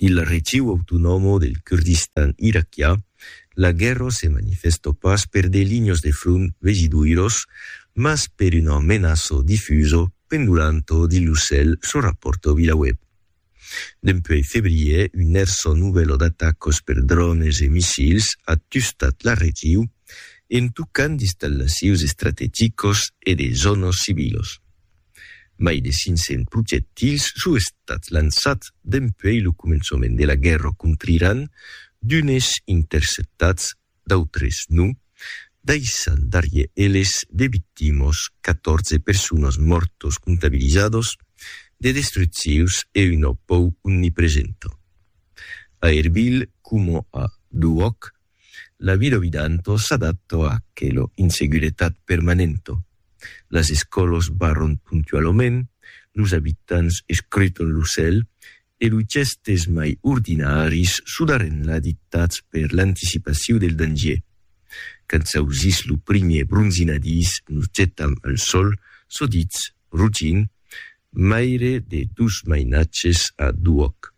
Dins la region autonòma del Kurdistan iraquià, la guèrra se manifestò pas per de linhas de front vegidoiras, mas per una menaça difusa pendolanta dins lo cèl, çò rapòrta Vilaweb. Dempuèi febrièr, una hèrsa novèla d'atacas per drònes e missils a tustat la region, en tocant d'installacions estrategicas e de zònas civilas. Mai de 500 projectils son estats lançats dempuèi lo començament de la guèrra contra Iran, d'unes interceptats, d'autres non, daissant darrièr eles de victimas, 14 personas mòrtas comptabilizadas, de destruccions e una pau omnipresenta. A Erbil, coma a Duhòc, La vida ovidanto s'adatto a aquelo in seguretat permanento. Las escòlos barron puntualament, los abitants escruton lo cèl e los gèstes mai ordinaris sudarren la dictats per l'anticipaciu del dangier. Quand s'ausís lo primier bronzinadís nos getam al sòl, sodits, rugint, maire de dos mainatges a d'uòc.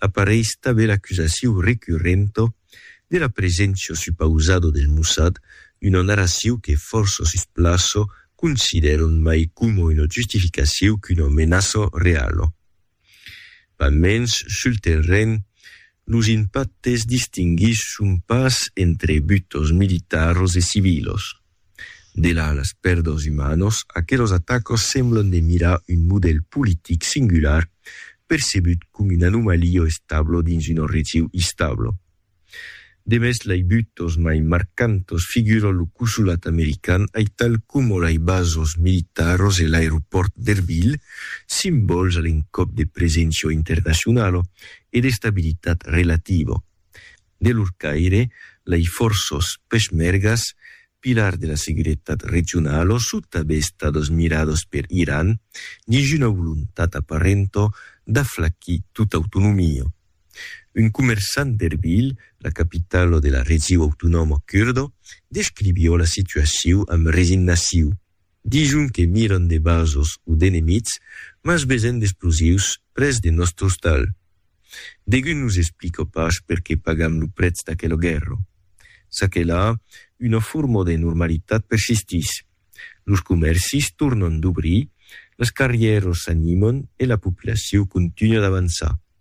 Apareis tanben l'acusaciu recurrento de la presencio supausado del Mossad, una narraciu que fòrça sus plaço considèron mai coma una justificaciu qu'una menaça reala. Pas mens, sul terren, los impactes distinguisson pas entre butos militaros e civilos. Delà las pèrdas umanas, aquelas atacas semblan de mirar un modèl politic singular percebut com una anomalia establa dins una region instabla. Demest lai butas mai marcantas figuran lo consolat american aital coma lai basas militaras e l'aeropòrt d'Erbil, simbòls a l'encòp de preséncia internacionala e d'estabilitat relativa. De lor caire, lei fòrços peshmergas, pilars de la seguretat regionala son tanben estados mirados per Iran, dins una volontat aparenta d'aflacir tota autonomia. Un comerçant d'Erbil, la capitala de la region autonòma curda, descriviá la situacion amb resignacion. Dison que miran de vasos o d'enemits, mas vesen d'explosius près de nòstre ostal. Degun nos explica pas perqué pagam lo prètz d'aquela guèrra. Ça que la, una forma de normalitat persistís. Los comèrcis tornan d'obrir, las carrièras s'animan e la populacion continua d'avançar.